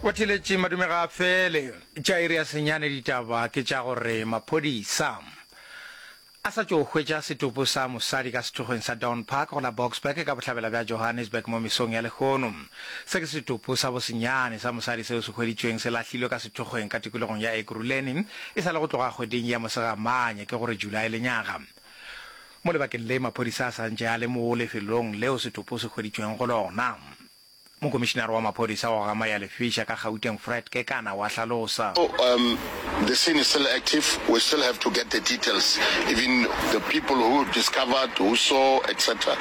O theletše madume ga a fele. Tša iri ya senyane ditaba ke tša gore maphodisa a sa tšo hwetša setopo sa mosadi ka sehlogeng sa Dawn Park go la Boksburg ka bohlabela bja Johannesburg mo mesong ya lehono. Se ke setopo sa bosenyane sa mosadi seo se hweditšweng se lahlilwe ka sehlogeng ka tikologong ya Ekurhuleni e sa le go tloga kgweding ya Mosegamanya, ke go re July lenyaga. Mo lebakeng le maphodisa a sa ntše a le mo lefelong leo setopo se hweditšweng go lona, mokomišinare wa maphodisa wa go amaya lefeša ka Gauteng Fred Kekana o a hlalosa. The scene is still active, we still have to get the details, even the people who discovered, who saw etc.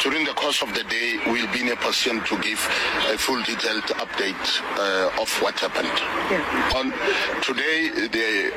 During the course of the day we will be in a position to give a full detailed update of what happened. On today the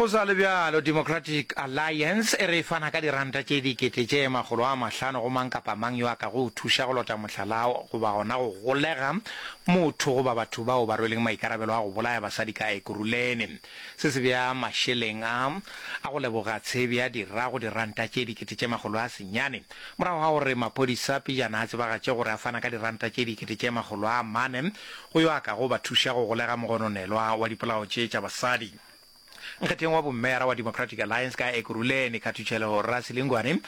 Go sa le bjalo, Democratic Alliance e re e fana ka diranta tše dikete tše makgolo a mahlano go mang kapa mang yo a ka go o thuša go lota mohlala goba gona go golega motho goba batho bao ba rweleng maikarabelo a go bolaya basadi ka Ekurhuleni. Se se bea mašeleng a a go leboga tshebi a dira go diranta tše dikete tše makgolo a senyane morago ga gore maphodisa pejana a tsebagatše gore a fana ka diranta tše dikete tše makgolo a mane go yo a ka go ba thuša go golega mogononelwa wa dipolao tše tša basadi. Nkgetheng wa bommeyara wa Democratic Alliance ka Ekurhuleni, Khathutšheleho Rasilingwane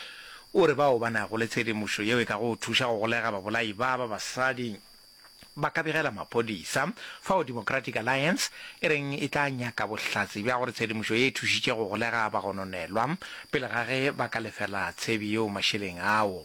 o re bao ba nago le tshedimošo yeo e ka go thuša go golega babolai ba ba basadi ba ka begela maphodisa, fao Democratic Alliance e reng e tla nyaka bohlatse bja gore tshedimošo ye e thušitše go golega bagononelwa pele ga ge ba ka lefela tshebi yeo mašeleng ao.